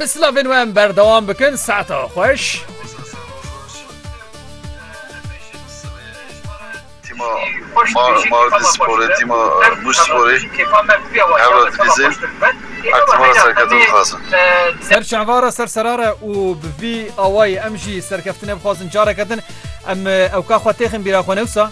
Bi silavên we em berdewam bikin saeta xweş. Tîma Mardinsporê, tîma Mûşsporê hewra dilîzên hevtimara serkeftin dixwazin. Ser çava re ser serar e û bi vî awayî em jî serkeftinê bixwazin careke din. Em ewka xwe têxin bîra xwe ne wisa?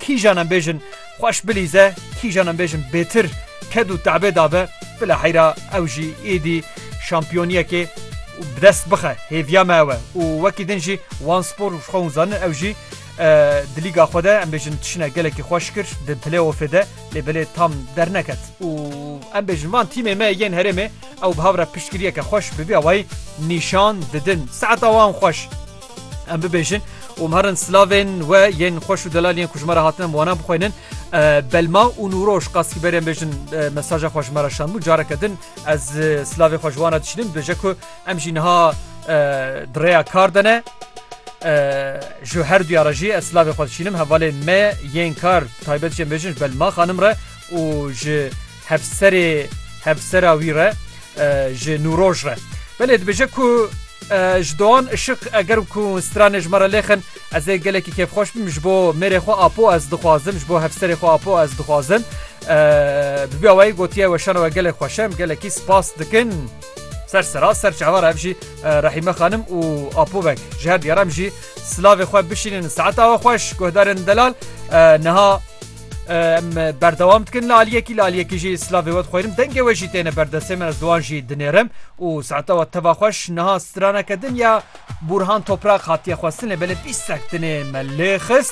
Kîjan em bêjin xweş bilîze, kîjan em bêjin bêtir ked û te'bê dabe, bila heyra ew jî êdî şampiyoniyekê bi dest bixe. Hêviya me ew e û wekî din jî wan spor ji xwe hûn zanin ew jî di lîga xwe de em bêjin tişine gelekî xweş kir di play-offê de lê belê tam derneket û em bêjin van tîmê me yên herêmê ew bi hev re piştgiriyeke xweş bi vî awayî nîşan didin. Saeta wan xweş. Em bibêjin û em herin silavên we yên xweş û delal yên ku ji me re hatine em wana bixwînin. Belma û Nûroş Qasîberên bêjin mesaja xwe ji me re şandbû careke din ez silavê xwe ji wana dişînim dibêje ku em jî niha di rêya kar de ne. ji her duya re jî ez silavê xwe dişînim hevalên me yên kar taybet jê bêjin ji belma xanim re û ji Hevserê hevsera wî re ji nûroj re. Belê dibêje ku ji doan işiq eger ku stranê ji me re lêxin ez ê gelekî kêfxweş bim ji bo mêrê xwe apo ez dixwazim ji bo hevserê xwe apo ez dixwazim bi vî awayî gotiye weşana we gelek xweş em gelekî spas dikin ser sera ser çavar ev jî rehîme xanim û apo vek ji her diyar em jî silavê xwe bişînin saet awe xweş guhdarên delal niha Em berdewam dikin li aliyekî li aliyekî jî slavê we dixwînim dengê we jî têne berdestê min ez di wan jî dinêrim û saeta we teva xweş niha straneke din ya Bûrhan Toprak hatiye xwestin lê belê bîst sek dinê me lê xist